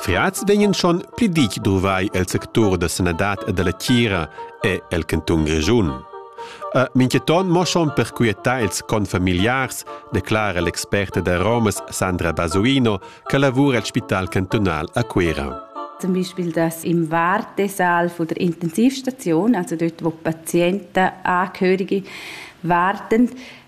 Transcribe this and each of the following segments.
Fiats vegnan schon pli ditg duvrai el sectur da sanadad e dalla tgira e el cantun Grischun. E mintgaton mo schon per quietar ils confamiliars, declara l'experta da Romas Sandra Basuino, che lavura al Spital cantunal a Cuira. Zum Beispiel das im Wartesaal von der Intensivstation, also dort, wo Patienten, Angehörige warten,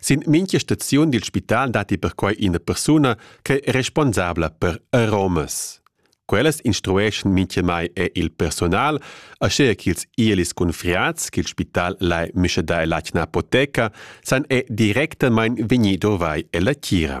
Sin mintga staziun dil spital datti perquai ina persuna ch'è responsabla per aromas. Quellas instrueschan mintgamai er il personal, aschia ch'ils ielis cunfriats ch'il spital lai mischadar ell'atgna apoteca san è directamain vegnì dovrai ella tgira.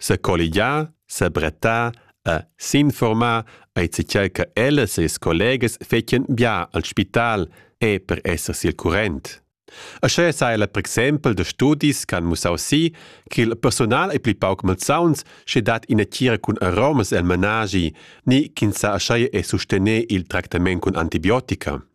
Secolligiar, sebrettar e s'informar ei zatgei che ellas e ils collegas fetien bia al spital e per esser sil current. Aschia sa ella per exempel da studis che han mussau si che il personal ei pli pauc malsauns sche dat ina tgira cun aromas el menaschi ni ch'ins sa aschia e sustener il tractament cun antibiotica.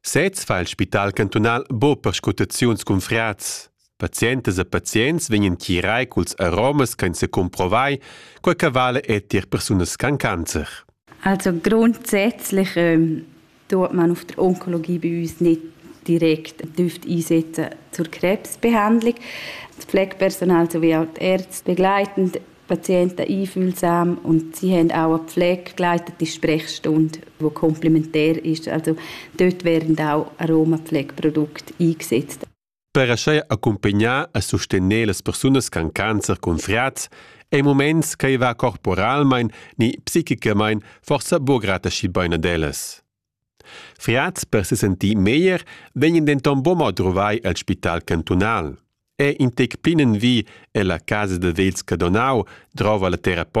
Sez fa il spital cantunal bo perscrutaziuns cun frats. Pazientas e pazients vegnan chirai culs aromas ch'ein secumprovai, quei che vale è tier persunas con cancer. Also grundsätzlich ähm, tut man auf der Onkologie bei uns nicht direkt einsetzen zur Krebsbehandlung. Das Pflegepersonal sowie auch die Ärzte begleitend Patienten einfühlsam und sie haben auch eine Pflege begleitet, die Sprechstunde, die komplementär ist. Also dort werden auch Aromapflegeprodukte eingesetzt. Per aschi accumpagnar e sostener las persunas con cancer cun friats ei moments che va corporalmein ni psichicamain forsa buca grata schi bein ad ellas. Friads per se sentir meglier vegnan denton buca mo druvai el spital cantunal. È in tec plinenvi ella casa da vegls Cadonau drova la terapeuta